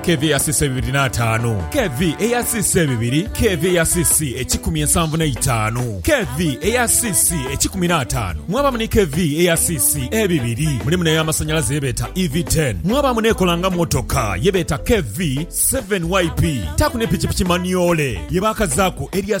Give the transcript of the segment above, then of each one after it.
KV eya CC bibiri n'ataanu. KV eya CC bibiri. KV eya CC ekikumi ensanvu n'eitaanu. KV eya CC ekikumi n'ataanu. Mwabamu ni KV eya CC ebibiri. Mulimu n'eya masanyalaze ye beeta EV ten. Mwabamu n'ekola nga motoka ye beeta KV seven YP. Taaku ne pikipiki manyoole ye baakazaaku erya.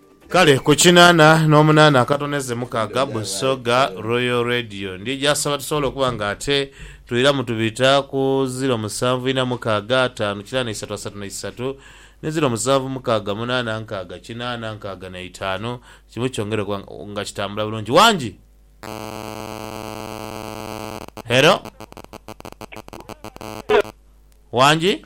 Kale ku kinaana n'omunaana akatoneze mukaaga Busoga Royal Radio ndhi gy'asaba tusobole okuba nga ate twiramu tubita ku ziro musanvu ina mukaaga ataanu kinaana isatu asatu na isatu ni ziro musanvu mukaaga munaana nkaaga kinaana nkaaga na itaanu kimu kyongere okuba nga kitambula bulungi. Wangi! Hello? Wangi?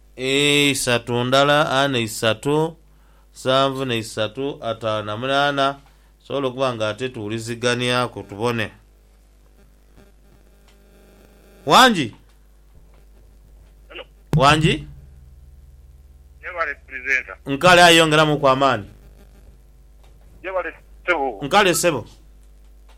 Ee, isatu ndala, ana isatu, nsanvu na isatu, ataano na munaana. Tusobola okuba nga ate tuwuliziganiaku tubone. Wangi? Wangi? Nkale, aye yongeramuku amaani. Nkale, ssebo.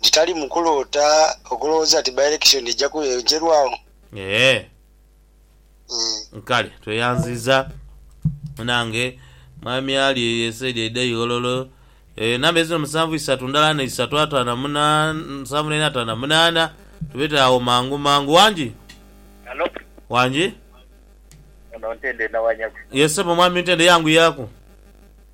nti tali mu kuloota okulowooza nti by-election eja kughenchelwagho. Eeh kale tweyanziza munange mwami ali eyo esaidi eidha ighololo eeh number ezino musanvu isatu ndala na isatu atano na munana musanvu naina atano na munana tubete agho mangu mangu wangi Halo. Wangi. Ono Ntende nawanyagu. Yes sebo mwami Ntende yanguyaku.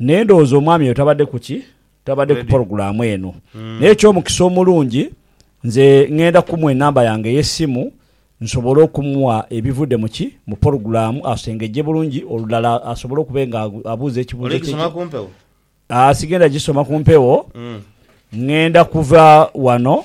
Naye ndowooza omwami oyo tabadde ku ki? Tabadde ku pologulaamu eno. Naye eky'omukisa omulungi, nze ngenda kumuwa enamba yange ey'essimu nsobole okumuwa ebivudde mu ki? Mu pologulaamu, asengejje bulungi olulala asobole okuba nga abuuza ekibuuzo kye ki? Sigenda gisoma ku mpewo. Ngenda kuva wano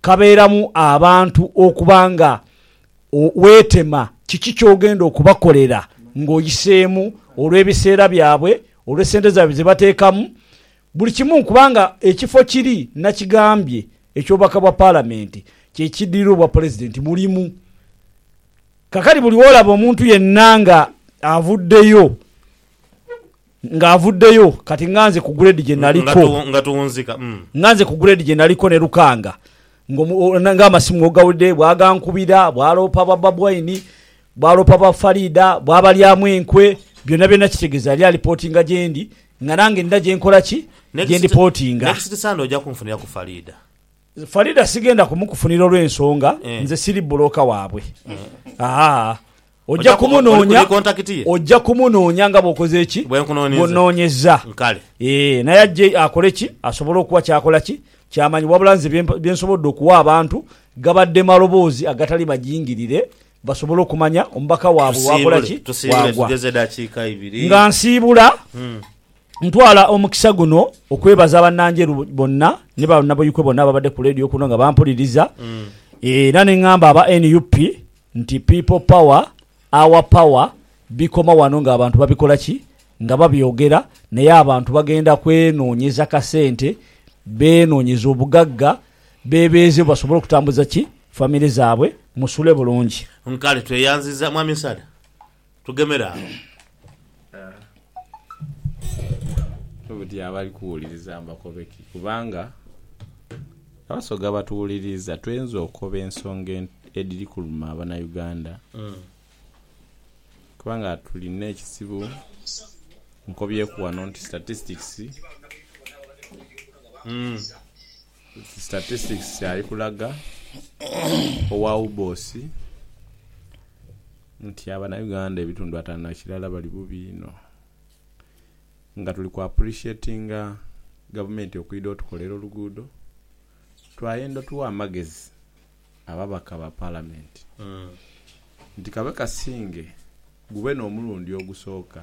kabeeramu abantu okuba nga weetema kiki ky'ogenda okubakolera ng'oyiseemu olw'ebiseera byabwe, olw'essente zaabwe ze bateekamu, buli kimu kubanga ekifo kiri nakigambye eky'obubaka bwa Palamenti kye kiddirira Obwapulezidenti mulimu. Kaakati buli w'olaba omuntu yenna ng'avuddeyo. Nga avuddeyo kati nga nze ku grade gye naliko. Nga tuwunzika, mm. Nga nze ku grade gye naliko ne Lukanga nga amasimu w'ogawulidde bw'agankubira, bw'aloopa ba Babwine, bw'aloopa ba Faridah, bw'abalyamu enkwe, byonna byonna kitegeeza yali alipotinga gye ndi nga nange nina gye nkola ki? Gye ndipotinga. Next Sunday oja kunfunira ku Faridah. Faridah sigenda kumukufunira olw'ensonga nze siri bbulooka waabwe. Haa. Oja kumunoonya, oja kumunoonya nga bw'okoze ki? Bw'onnoonyezza. Eeh, naye ajje akole ki? Asobole okuwa ky'akola ki? Ky'amanyi. Wabula nze bye, bye nsobodde okuwa abantu, gabadde maloboozi agatali majingirire, basobole okumanya omubaka waabwe waakola ki, waagwa. Nga nsiibula, ntwala omukisa guno okwebaza Bannanjeru bonna ni Bannabuikwe bonna ababadde ku leediyo kuno nga bampuliriza, era ne ngamba aba nup, Nti people power, our power bikoma wano nga abantu babikola ki? Nga babyogera naye abantu bagenda kwenonyeza kasente, benonyeze obugagga, bebeezewo basobole okutambuza ki? Family zabwe. Musule bulungi. Nkale tweyanziza mwami Sada. Tugemere agho. Obuti abali kuwuliriza mbakobe ki? Kubanga Abasoga abatuwuliriza tweinza okoba ensonga edhiri kuluma Abanauganda kubanga tulina ekizibu. Nkobyeku wano nti statistics. Statistics kyali kulaga owa UBOS nti abanauganda ebitundu atano na kirala bali bubi inho nga tuli ku appreciatinga gavumenti okwidha otukolera oluguudo twayenda otuwa amagezi ababaka ba palamenti nti kabe kasinge gube n'omulundi ogusooka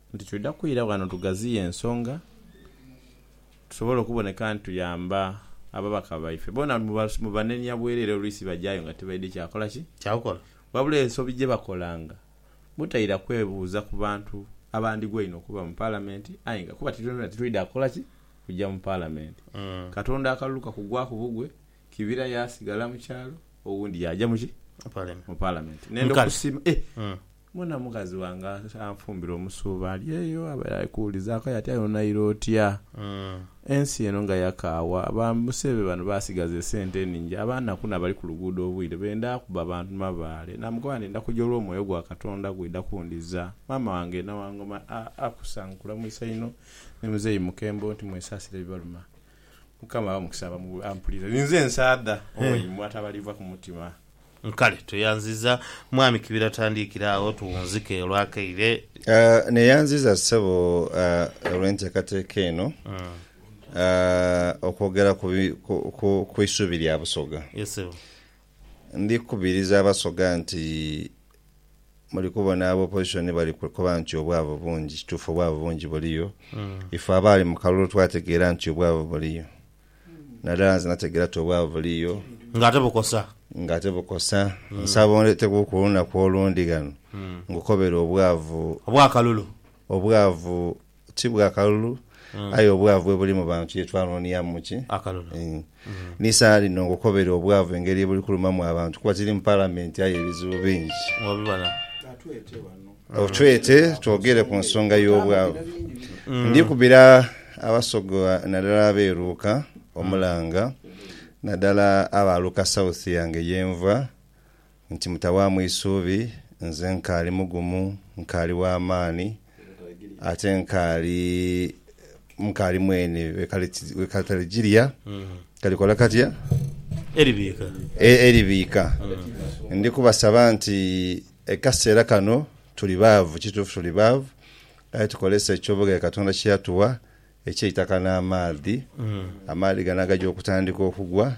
Nti twidha kwira ghano tugaziye ensonga tusobole okuboneka nti tuyamba ababaka baife. Boona mu banenya bwerere oluisi bajayo nga tibaidhi kya kola ki? Kya kukola. Wabula ensobi gye bakolanga butaira kwebuuza ku bantu abandigwa einho okuba mu Palamenti aye nga kuba titwena titwidha kukola ki? Kuja mu Palamenti. Katonda akalulu kakugwaku bugwe, Kibira yaasigala mu kyalo, owundi yaaja mu ki? Mu Palamenti. N'endhokusima, eh! Mbona mukazi wange anfumbira omusuuba ali eyo abaire ali kuwulizaaku aye ati aye onaire otya ensi eno nga yakaawa? Ba Musebe bano basigaza esente eningi abanaku n'abali ku luguudo obwire benda kuba bantu mabaale. Namugamba nti ndakuja olw'omwoyo gwa Katonda gw'oidha kundhiza. Maama wange n'awangoma a Akusa nkulamwisa inho ni muzeeyi Mukembo nti mwesaasire ebibaluma. Mukama aghe omukisa abamu ampulira. Ninze nsaadha owaimwe atabaliibwa ku mutima. Kale tweyanziza mwami kibira tandiikira agho tuwunzike olwakaire. Neyanziza ssebo olw'enteekateeka eno okwogera ku isuubi lya Busoga. Ndikubiriza Abasoga nti Muli kubona aba opposition bali kukoba nti obwavu bungi. Kituufu obwavu bungi buliyo. Ife abaali mu kalulu twategeera nti obwavu buliyo. Nadala nze nategeera ti obwavu buliyo. Nga ate bukosa. Nga ate bukosa. Nsaba ondeeteku ku lunaku olundi ghano ngukobere obwavu. Obw'akalulu. Obwavu Ti bwa kalulu, aye obwavu bwebuli mu bantu ye twanoniamu ki? Akalulu. N'eisaala lino ngokobere obwavu engeri yebuli kulumamu abantu kuba tiri mu Palamenti aye ebizibu bingi. Obibona. Otwete twogere ku nsonga y'obwavu. Ndikubira Abasoga nadala ab'e Luuka omulanga nadala aba Luuka South yange yenva. nti, Mutawaamu isuubi, nze nkaali mugumu, nkaali wa maani, ate nkaali mukaali mweni we kataligirya kalikola katya? Eribiika. Ndi kubasaba nti ekaseera kano tuli baavu, kituufu tuli baavu, aye tukozese eky'obughagha Katonda kye yatuwa eky'eitaka n'amaadhi. Amaadhi gano agagya okutandika okugwa,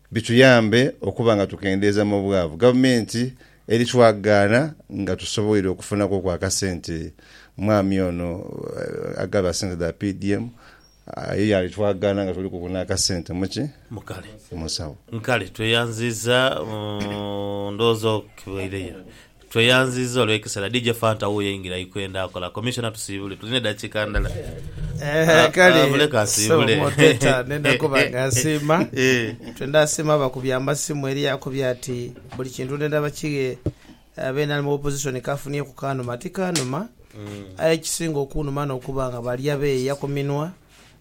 bituyambe okuba nga tukendeeza mu bwavu gavumenti eri twagaana nga tusoboire okufunaku oku akasente mwami ono agaba sente dha PDM aye yaali twagaana nga tulikuku n'akasente muki? Mu nsawo. Nkale tweyanziiza, ndhowooza okibweireyo. Tweyanziza olwekisera DJ Fanta wuyo eingira ikwenda kola commissioner tusiibule tulina edakiika ndala Kale bule kansiibule Sebo Teta nenda kuba nga nsiima Twe ndasiima abakubye amasimu eriyo akubye ati buli kintu nenda bakighe Abeene ali mu opposition kafunie ku kanuma tikanuma Aye ekisinga okunuma nokuba nga bali abeeya ku minwa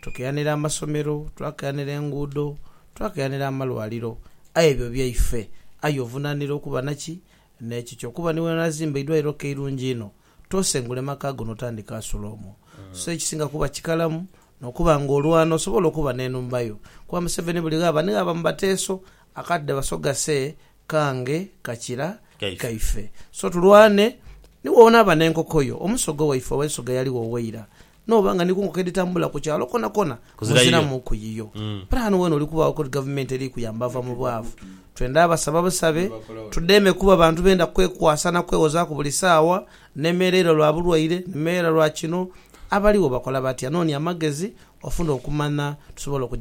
Tukiranira amasomero, twakiranira enguudo, twakiranira amalwaliro, aye ebyo byaife. Aye ovunaanira okuba naki? N'ekikyo. Kuba ni bw'onaazimba eidwaliro ko eirungi einho, toosengule maka go n'otandika asula omwo. So ekisinga kuba kikalamu n'okuba nga olwana osobole okuba n'enhumba yo. Kuba Museveni buli ghaba ni ghaba mu bateeso akati dhe basoga see kange kakira kaife. So tulwane ni woonaaba n'enkoko yo. Omusoga owaife oba ensoga eyali wo waira, n'oba nga ni ku nkoko edhitambula ku kyalo kwonakona muziramuuku yiyo. Pulaani weene oli kubaagho kuri gavumenti eri kuyamba ava mu bwavu. Twendha basaba busabe tudheeme kuba bantu benda kwekwasa na kwewozaaku buli saawa. Nemereire lwa bulwaire, nemereire lwa kino. Abaligho bakola batya? Noonia amagezi ofune okumanya tusobole okugya.